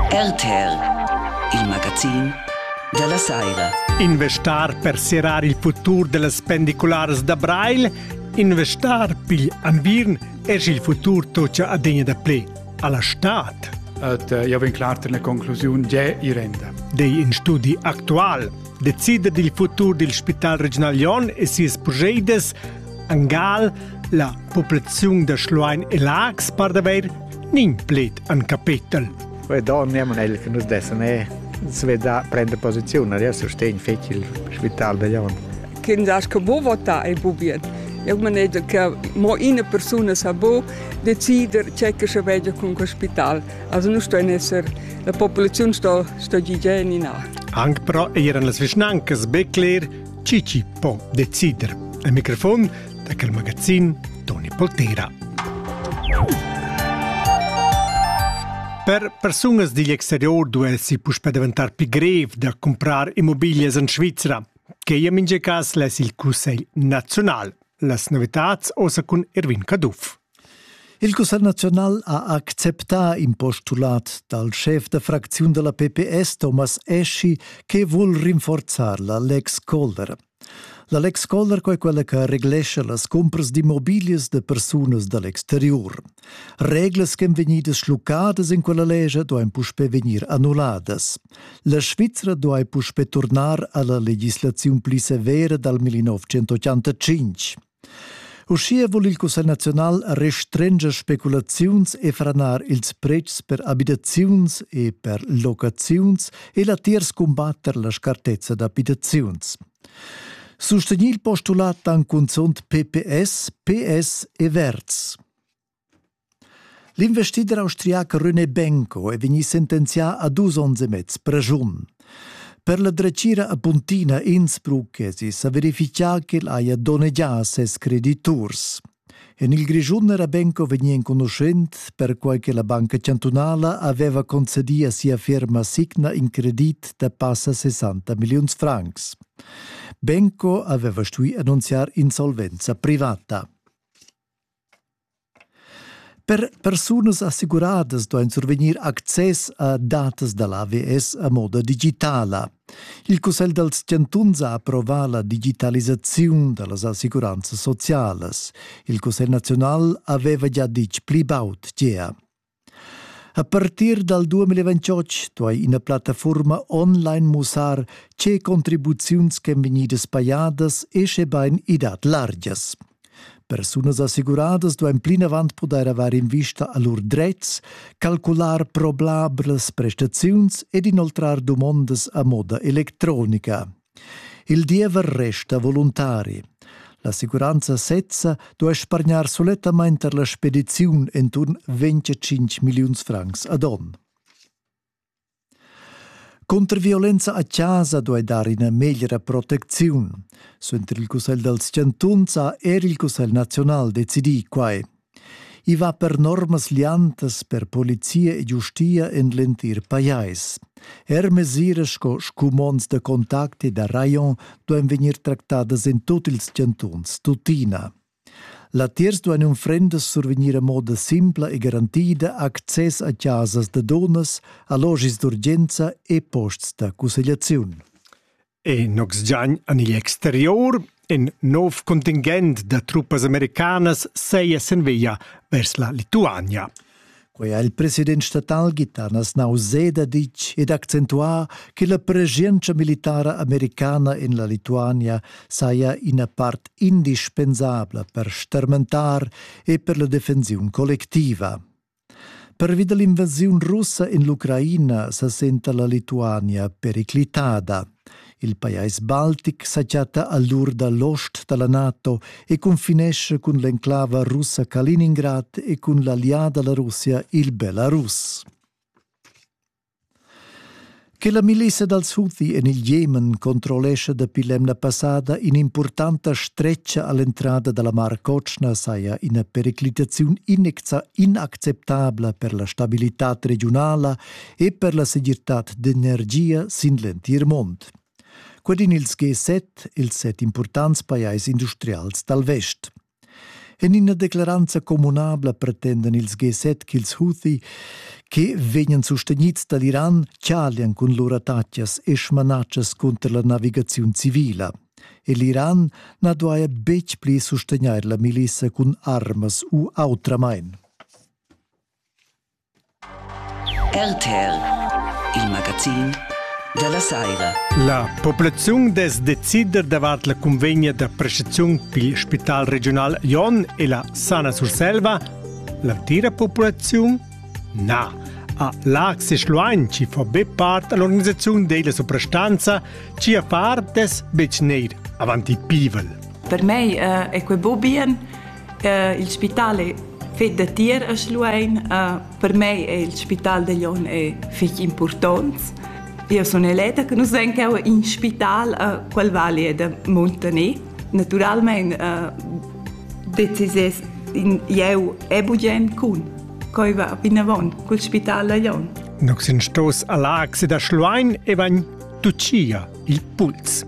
RTR, il magazin dalla Saira. Investar per serrar il futur dellas pendicularas da Brail, investar pigl ambirn es il futur tocha adegna da ple alla stad. Et eh, io vin clar ter la conclusiun ge irenda. Dei in studi actual decida il futur dil Spital Regional Lyon e sies progetes Angal la populaziun da Schluein e Lags par d'haver nin pled an capetel. Quei donn amo el che nus dessan er sveda prender posiziun, adesso sustegn fetg il spital da Jon. Kind as che bo vota e bo bien. Eu manegia che mo ina persuna sa bo decider c'è che se vegia con quel spital. Also nu sto esser la popolazione sto sto gigeni na. Anche però eran las vicinanzas be cler Cici po decider. Al microfon da quel magazin Toni Poltera. Per persunas digl exterior duessi puspè daventar pli grev da comprar immobiglias en Svizra. Che in minge cas less il Cussegl naziunal. Las novitads osa cun Erwin Caduff. Il Cussegl naziunal ha acceptà in postulat dal schef da fracziun da la PPS Thomas Eschi che vul rinforzar la Lex Kohler. La Lex Kohler è quella che reglescha las cumpras d'immobiglias da persunas da l'exterior. Reglas che vegnidas schluccadas in quella legge duain puspè vegnir annulladas. La Svizzera duai puspè turnar a la legislaziun pli severa dal 1985. Uschia vul il Cussegl naziunal restrenger speculaziuns e franar ils pretschs per abitaziuns e per locaziuns e latiers cumbatter la scartezza d'abitaziuns. Sustegni il postulat anc cunzunt PPS, PS e Verds. L'investider austriac René Benko è vegnì sentenzià a dus onns e mez preschun. Per la dretgira apuntina Innsbruck èsi sa verifichà ch'el haja donnegià ses crediturs. En il Grischun era Benko vegnì enconuschent perquai che la Banca chantunala aveva concedì a sia firma Signa in credit da passa 60 milliuns francs. Benko aveva stuì annunziar insolvenza privata. Per persunas assicuradas duain survegnir access a datas da l'AVS a moda digitala. Il Cussegl dals chantuns ha approvà la digitalisaziun da las assicuranzas socialas. Il Cussegl naziunal aveva gia ditg pli baud gea. A partir dal 2028 duai ina plattafurma online mussar tge contribuziuns ch'èn vegnidas pajadas e schebain i dat largias. Persunas assicuradas duain plinavant pudair avair invista a lur dretgs, calcular probablas prestaziuns ed inoltrar dumondas a moda electronica. Il diever resta voluntari. L'assicuranza sezza duai spargnar sulettamain tar la spediziun enturn 25 milliuns francs ad onn. Cunter violenza a chasa duai dar ina meglra protecziun. Suenter il Cussegl dals chantuns ha er il Cussegl naziunal decidì quai. I va per normas liantas per polizia e giustia en l'entir pajais. Er mesiras sco scumonds da contact e da rajon duein vegnir tractadas en tut ils chantuns, tuttina. Latiers duein unfrendas survegnir a moda simpla e garantida access a casas da dunnas, allogis d'urgenza e posts da cussegliaziun. e nox giagn an igl exterior in nov contingent da truppas americanas seia sen via vers la Lituania. Quei ha il president statal Gitanas Nauseda ditg ed accentuà che la pregientscha militara americana en la Lituania saja ina part indispensabla per stermentar e per la defensiun collectiva. Pervi da l'invasiun russa en l'Ucraina sa senta la Lituania periclitada. Il pajais baltic sa chatta a l'ur da l'ost da la NATO e confinesce cun l'enclava russa Kaliningrad e cun l'allià da la Russia il Belarus. Che la milissa dals Houthi en il Jemen controllescha dapi l'emna passada in'impurtanta stretga a l'entrada da la Mar Cotschna saja ina periclitaziun inacceptabla per la stabilitad regiunala e per la segirtad d'energia sin l'entir mund. Quel in ils G7, ils set impurtants pajais industrials dal vest. En ina declaranza communabla pretendan ils G7 ch'ils Houthi, che vegnan sustegnids dal Iran, chalian cun lur attacas e smanatschas cunter la navigaziun civila. E l'Iran na duaja betg pli sustegnair la milissa cun armas u autramain. RTL il magazin dalla saira. La populaziun dess decider davart la convegna da prestaziun pil Spital regional Jon e la Sana Surselva. L'entira populaziun? Na. A Lax e Schluein ci fa be part all'organisazione della soprastanza, ci a far des bec neir avanti pivel. Per mei eh, è quei bo bien il spital è fet da tier a Schluein. Per mei è il spital de Lyon è fich important. Io sono eleta che nus vegn cheu in spital qual vali è da Montaner. Naturalmente decisies in jeu e bugen cun coi va vinavon cul spital da Lyon. Nox in stos a l'axe da Schluein e vegn tucia il puls.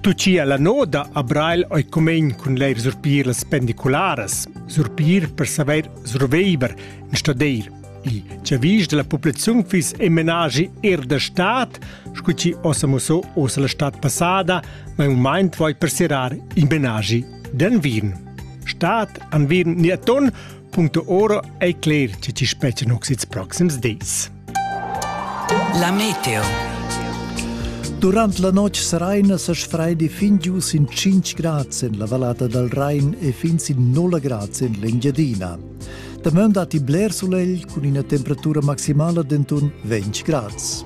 Tutgia la noda a Brail ei cumein cun leir surpir las pendicularas, surpir per saver surveiver in stadeir. I chavis della populaziun fis e menagi er da stat, scu ci ossa musso ossa la stat passada, ma un maint voi per serar i menagi den Wien. Stat an Wien ni aton, puncto oro ei cler che ci specen oxits proxims dis. La meteo. Durant la notg seraina sa sfraidi fin giu sin 5 grads en la vallata dal Rain e fin sin 0 grads en l'Engiadina. Dameun datti bler sulegl cun ina temperatura maximala denton 20 grads.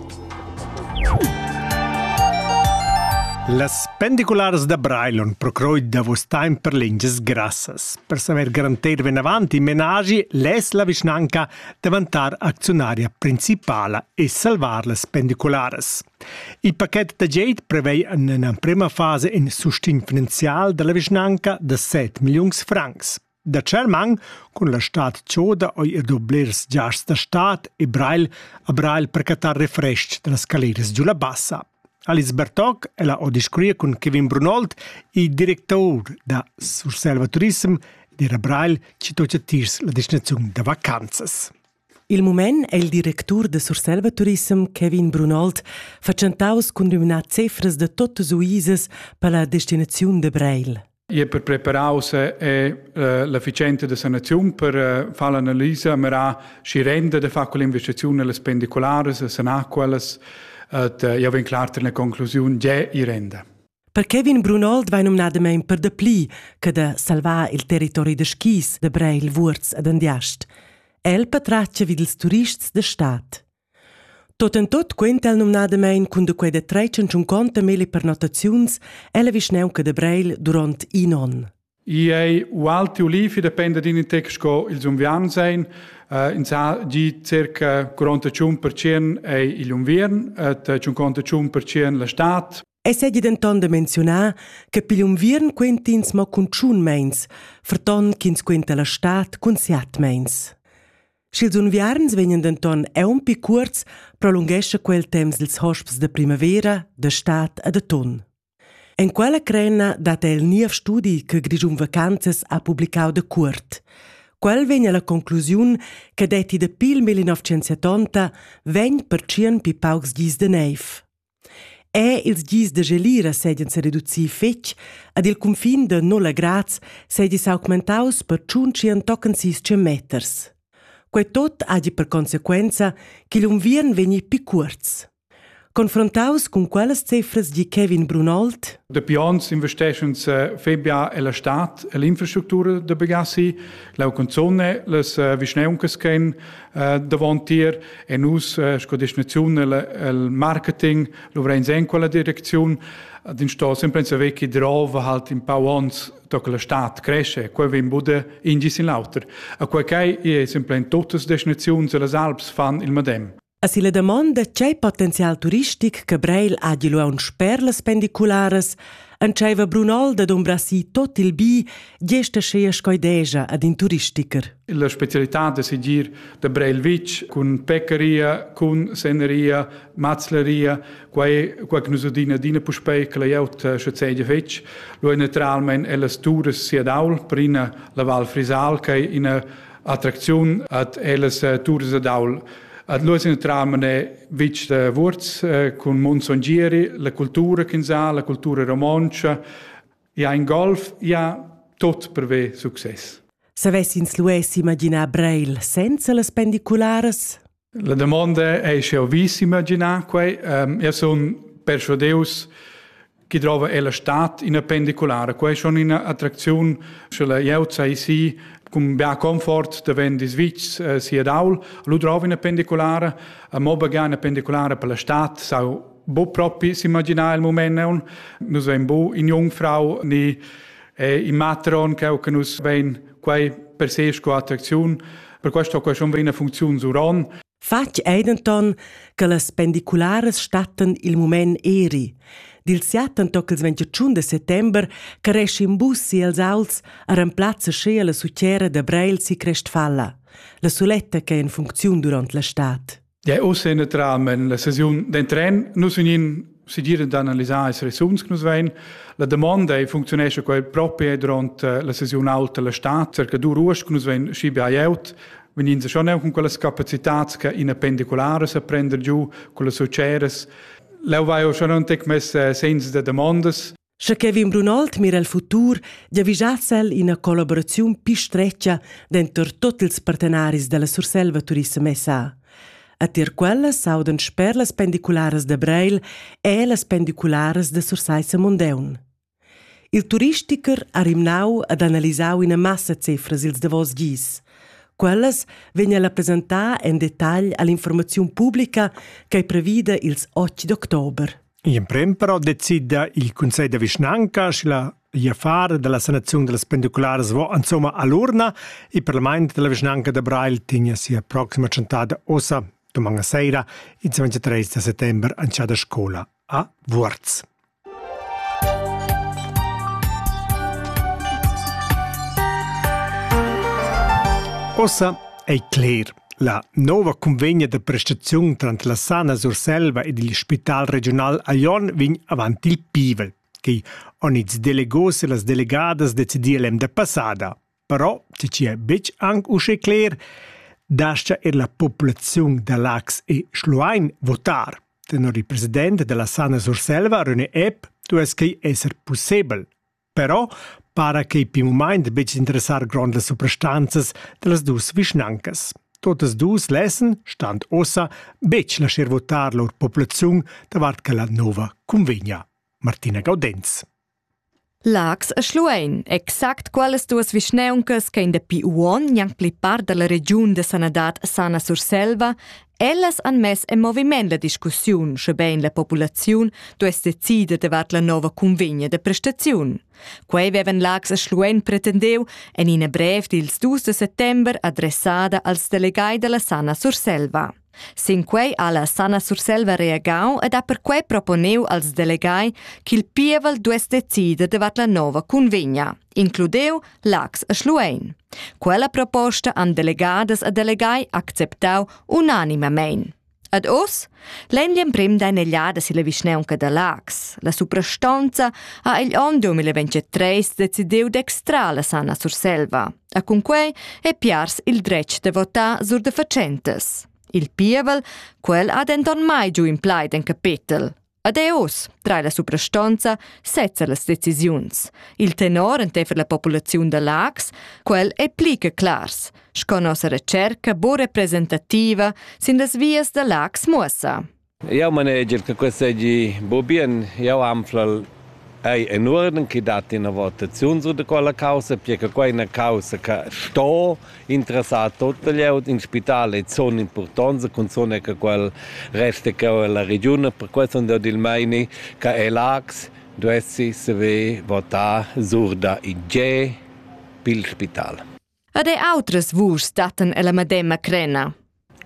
Las pendicularas da Breilon procroi davos temps per lingias grassas. Per samer garantir venavant i menagi less la vischnanca daventar acziunaria principala e salvar las pendicularas. Il paquet da geit prevei en emprema fase in sustegn finanzial dalla vischnanca da 7 milliuns francs. Da Tschermang, cun la stad Choda oi e doblers giars da stad e Brail a Brail per catar refresc dalla scaleras giu la bassa. Alice Bertoc ella ho discurria cun Kevin Brunold, il directur da Surselva Turism, dir a Brail chi tocha tiers la destinaziun da vacanzas. Il mument è il directur da Surselva Turism Kevin Brunold fatschentaus cun numnar cefras da tuttas uisas per la destinaziun de Breil. i è per preparaus e eh, l'efficienza da sanaziun per eh, fare l'analisa mera si rende de fare quell'investizione alle spendicolares sanare quellas io vin clar ter una conclusione già i rende Per Kevin Brunold vai nomnadamain per dapli che da salvar il territori da skis da Breil, Wurz ed Andiast. El patratgia vid ils turists da stad. Tot en tut quenta el numnadamein cun da quei da tretg entschunconta melli pernottaziuns ella vischnaunca da Breil duront in onn. I ei ualti ulifi dependa d'in intec sco ils unviarns ein. Uh, in sa gi circa 45% ei igl unviern et uh, 55% la stad. E segi denton da menzionar che pigl unviern quentins mo cun tschun meins, ferton ch'ins quenta la stad cun siat meins. Sch'ils unviarns vegnan denton aunc cuorts, prolunghescha quel temps ils hosps da primavera, da stad e d'atun. En quella crena dat el niev studi che Grischun Vacanzas ha publicau da cuort. Quel vegn alla conclusiun che detti dapi il 1970 vegn per tschien pi paucs gis de neiv. Er ils gis da gelira seigien sereducir fetg, ad il cunfin da nulla grads seigi s'augmentaus per tschuntschien tochen sis meters. Quei tot hagi per consequenza ch'igl unviern vegni pi cuorts. Confrontaus cun quellas cifras di Kevin Brunold. Dapi onns investeschens Febia e la stat e l'infrastructura da bagasi, la cunzone, las vischneuncas che Uh, davantier e nus uh, sco destinaziun el, el marketing luvreins en quella direcziun ad in sto sempre in saver chi drova halt in pau ons da che la stat cresce quei vegn bude ingis in l'auter a quei chai è sempre in totas destinaziuns e las Alps fan il madem A si la damonda tgei potenzial turistic che Breil hagi lu aunc per las pendicularas Entscheiva Brunal da dumbrar si tot il bi, gesta schea scoidegia ad in turistiker. La specialità da seguir da Breilwitsch cun peccaria, cun seneria, mazleria, quai quai che nus adina adina puspei che lajaut sche sedia fetg, lo è naturalmente ellas turas sia daul per ina la Val Frisal che ina attracziun ad ellas turas ad aul Ad Luoz in tram ne vitg da Wurz cun Monson Gieri, la cultura ch'ins ha, la cultura romontscha, ja in golf, ja tot per ve success. Savess ins lu imaginar Breil senza las pendicularas? La domanda è sche ho vis imaginar quei. Um, io sun persuadeus chi drova ella stat ina pendiculara. Quai schon ina attracziun, sche la glieud sai si cun bia comfort da vendis vics eh, si ad aul, lu drova ina pendiculara, a mo bagà una pendiculara per la stat, sau bu propi s'imaginar il moment neun, nus vein bu in jungfrau ni eh, in matron che che nus vein quai per sé sco attracziun, per questo qua schon vena funziun zuron Fatg ei denton che las pendicularas stattan il mument eri. Dil siaten toc il 21 de settember caresci in bus si els auls a remplazza schea la sucera de Breil si Crestfalla, la suletta che è in funcziun durant la stad. Ja, oss in tram en la sesiun den tren, nus in segir d'analisar ils resuns che nus vein. La domanda è, funcziunescha quai propi durant la sesiun alta la stat, che dur uost che nus vein schi buyout, vegnin se schon con quelles capacitats che in pendiculares sa prender giu, con las uceres. Leu vai schon un tec mess senza de demandas. Sche Kevin Brunoldt mira el futur, giavischass el ina collaboraziun pi stretga denter tut ils partenaris dalla Surselva Turissem SA. A tier quellas s'audan sper las pendicularas da Breil e las pendicularas da Sursaissa Mondeun. Il turisticher ha rimnau ad analisar ina massa cefras ils davos gis. Quellas vegn a presentar en detagl all'informaziun publica ch'ei previda ils 8 d'october. Gl'emprem però decida il cunsegl da vischnanca sche la gl'affar dalla sanaziun dallas pendicularas vo insomma all'urna e parlament dalla vischnanca da Breil tegna sia proxima tschentada ossa doman a seira ils 23 da settember an sia da scola a Vuorz. Ossa ei cler. La nova cunvegna da prestaziun tranter la Sana Surselva ed il Spital regiunal a Jon vegn avant il pivel. Quei han ils delegos e las delegadas decidiu l'emda passada. Però, tgi è betg anche uschè cler, dascha er la populaziun da Lax e Schluein votar. Tenor il president della Sana Surselva, René Epp, duess quei esser pussebel. Però para quei pil mument buc interessar grondas suprastanzas dallas dus vischnancas. Totas dus lessen, stand ossa, betg lascher votar lur populaziun davart quella nova cunvegna. Martina Gaudenz. Lax e Schluein, exact quales duas vischneuncas che in dapi uon gnanc pli part dalla regiun de sanadad sana Surselva Ellas han mess en moviment la discussiun, schebein la populaziun duess decider davart la nova cunvegna da prestaziun. Quei vevan Lax a Schluein pretendeu en ina brev dils dus de settember adressada als delegai dalla Sana Surselva. Sin quei ha la Sana Surselva reagau ed ha perquei proponeu als delegai ch'il pievel duess decider davart la nova cunvegna. includeu Lax e Schluein. Quella proposta han delegadas e delegai acceptau unanimamein. Ad oz, l'emprem da negliada silla vischnaunca da Lax, la suprastonza ha igl onn 2023 decidiu d'extrar la Sana Surselva. E cun quei è piars il dretg de votar sur de facentes. Il pievel, quel ha denton mai giu in plaid en capetel. Ad è oz trai la suprastonza sezza las decisiuns. Il tenor enteifer la populaziun da Laax, quel è pli che clars, sco nossa recerca bo representativa sin las vias da Laax muossa. Jau maneger che questo è bo bien. Jau anfl ei en orden che dat ina votaziun su de quella causa, perché quella è una causa che sto interessà tutta glieud. In spital è zona impurtonza, cunzuna che quel resta che la regiun, per questo on dad il meini che è l'ax duessi saver votar surda in G pil spital. Ed autres vuschs dattan ella medema crena.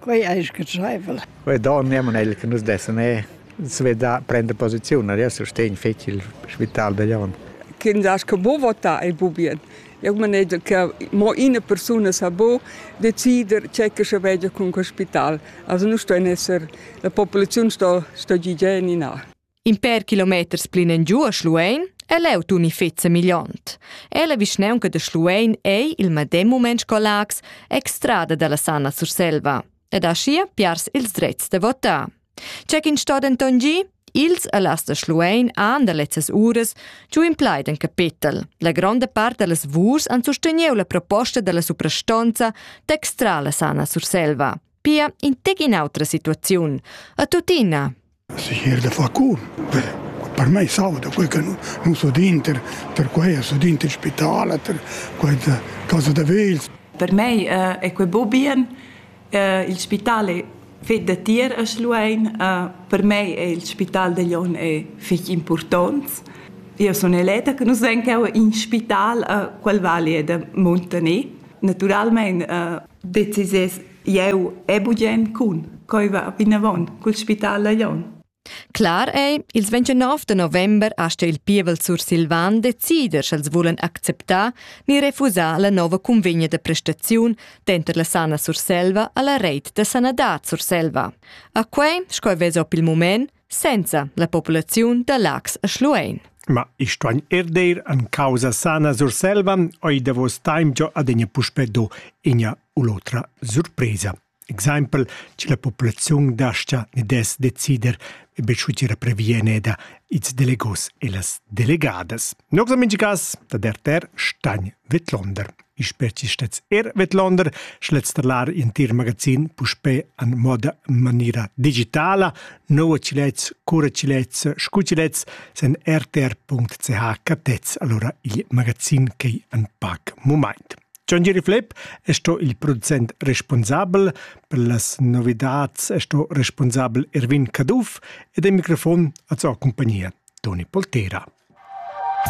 Quei ei scatscheivel. Quei donn era el che nus dessan er svedar, prender posiziun. Adesso stegn fetg il spital degli onn. Ch'ins aschi buc votar ei buc bien. Eu manegia che mo ina persuna sa buc decider tgei che sche veggia cun quel spital. Also nu sto esser, la populaziun sto, sto gir giu ennà. In per kilometers plinengiu a Schluein è leu tun i fetza migliont. E la vischneunca de Schluein ei il medem moment collax extrada dalla Sana Surselva ed aschia piars ils drets de votar. C'è in sto denton gi? Ils allas de Schluein han da lezzas uras giu implaid in capetel. La gronda part dallas vurs han susteniu la proposta dalla suprastonza d'extrar la Sana Surselva. Pia in tec in autra situaziun. A tuttina, Segir da far cur, per, per mei sauda quei che nus udin tier tier quei, els udin tiel spital, tier quei da casa da vegls. Per mei ei quei buca bien. Il spital ei fetg datier a Schluein. Per mei ei il spital da Glion ei fetg impurtont. Io sun eleta che nus vein cheu in spital, quel vali da muntaner. Naturalmein decisas Jeu e bugen cun, coi va vinavon cul spital a Jon. Clar ei, ils 29 de november asta il pievel sursilvan decider sch'els vulan acceptar ni refusar la nova convegna de prestaziun denter la Sana Surselva alla reit de sanadad Surselva. A quei, sco vess op il moment, senza la populaziun da Lax a Schluein. Ma i stuain er dir an causa sana Surselva, oi davos taim giò adegna puspe do inia u l'otra surpresa. Exempel, ci la populaziun dascia ne des decider e besciucira previeneida its delegos e las delegadas. Nox a mingi cas, da der ter stagn vetlonder. i spezi stets er vedlonder schletzterlar in tir magazin puspe an moda manira digitala noa cilets cura cilets scucilets sen rtr.ch catets allora il magazin che an pac moment John Jerry Flip è sto il producent responsabel per las novidades è sto responsabel Erwin Caduff ed è microfon az compagnia Toni Poltera.